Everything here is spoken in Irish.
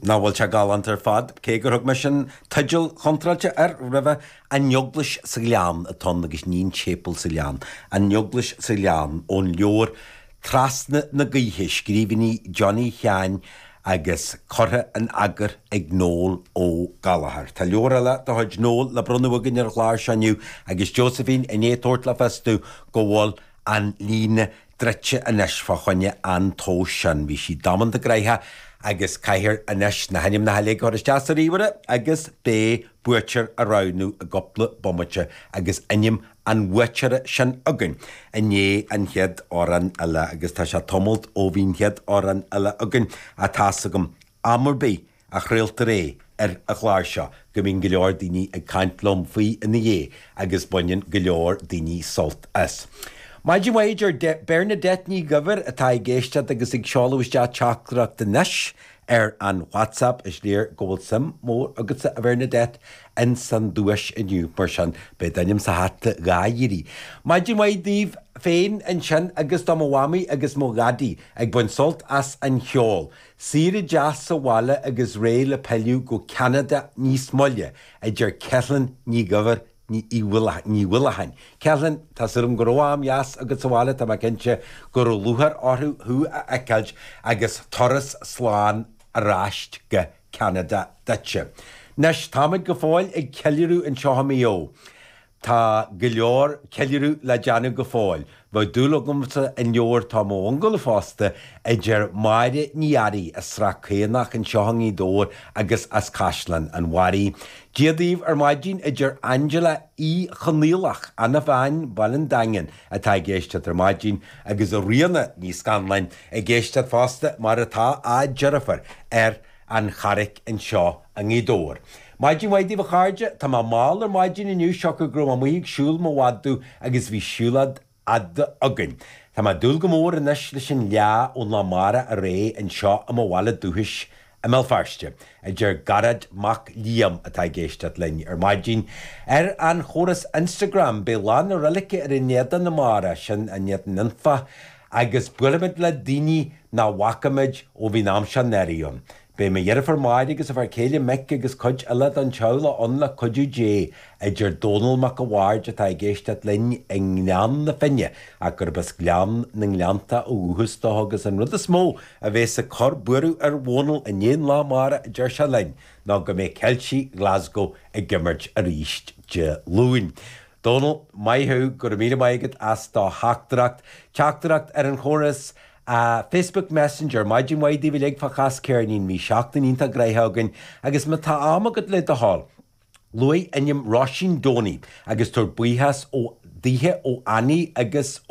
Nach bhfuil sé galánta ar fad, cé gur thug mé sin teideal contráilte air roimhe, An Eaglais sa Ghleann atá ann agus ní An Séipeal sa Ghleann, An Eaglais sa Ghleann, ón leabhar Trasna na Gaoithe, Scríbhinní Johnny Sheáin agus curtha in eagar ag Noel Ó Gallchóir. Tá leabhar eile de chuid Noel le bronnadh againn ar an gclár seo inniu agus Josephine i ndiaidh tabhairt le fios dom go bhfuil an líne druidte anois fá choinne an tomhais sin. Bhí sí damanta gnoitheach agus caithfear anois na hainmneacha uilig a chur isteach sa ríomhaire agus béidh buaiteoir á roghnú i gcupla bomaite agus ainm an bhuaiteora sin againn i ndéidh an chéad amhrán eile agus tá sé tamalt ó bhí'n chéad amhrán eile againn ach tá 's agam am ar bith a chraoltar é ar an gclár seo, go mbíonn go leor daoine ag caint liom faoi ina dhiaidh agus baineann go leor daoine sult as. Maidin mhaith, a deir Bernadette Ní Dhuibhir atá ag éisteacht agus ag seoladh isteach teachtaireacht anois ar an WhatsApp. Is léir go bhfuil suim mhór agatsa, a Bhernadette, ins an duais inniu, mar sin beidh d'ainm sa hata dhá iarraidh. Maidin mhaith daoibh féin ansin agus do mo mhamaí agus mo dhadaí ag baint sult as an cheol. Saoire deas sa bhaile agus réidh le pilleadh go Ceanada níos moille, a deir Ceithleann Ní Dhuibhir Ní Dhúlacháin. Ceithleann, tá súil agam go raibh am dheas agat sa bhaile, tá mé cinnte go raibh lúcháir orthu thú a fheiceáilt agus turas slán ar ais go Ceanada duitse. Anois, táimid go fóill ag ceiliúradh anseo i Maigh Eo. Tá go leor ceiliúradh le déanamh go fóill. Bheadh dúil agamsa an leabhar Tá Mo Ungadh fosta a deir Máire Ní Fhearraigh as Srath Caonach anseo i nGaoth Dobhair agus as Caisleán an Bharraigh. Dia daoibh ar maidin a deir Angela Uí Chonaollach, ana-bhean Bhaile an Daingin, atá ag éisteacht ar maidin, agus Ríona Ní Scanláin ag éisteacht fosta mar atá a deirfiúr ar an Charraic anseo i nGaoth Dobhair. Maidin mhaith daoibh a chairde. Tá mé mall ar maidin inniu siocair go raibh mé amuigh ag siúl mo mhadadh agus bhí siúlóid fhada againn. Tá mé ag dúil go mór anois leis an fhleá ón lá amárach ar aghaidh anseo i mo bhaile dúchais i mBéal Feirste, a deir Garrett Mac Liam atá ag éisteacht linn ar maidin ar an chóras Instagram. Beidh lá na roilige ar an Éadan amárach, sin an tÉadan Anfach Agus buailfimid le daoine nach bhfacaimid ó bhí'n am seo anuraidh ann. Beidh mo dheirfiúr Máire agus a fear céile Mick agus cuid eile do'n teaghlach ann le cuidiú Dé, a deir Dónall Mac a' Bhaird atá ag éisteacht linn i nGleann na Finne ach gurab as Gleann na nGleannta ó dhúchas dó agus an rud is mó a bhéas ag cur buaireadh ar Dhónall i ndiaidh an lá amárach a deir sé linn ná go mbeidh Ceiltigh Glasgow ag imirt arís Dé Luain. Dónall, Maith thú, go raibh míle maith agat as do theachtaireacht. Teachtaireacht ar an chóras Facebook Messenger. Maidin mhaith daoibh uilig, faoi Chas Ceirnín. Bhí seachtain iontach gnoitheach againn agus má tá am agat le do thoil, luaigh ainm Róisín Doney agus tabhair buíochas daoithe ó Annie agus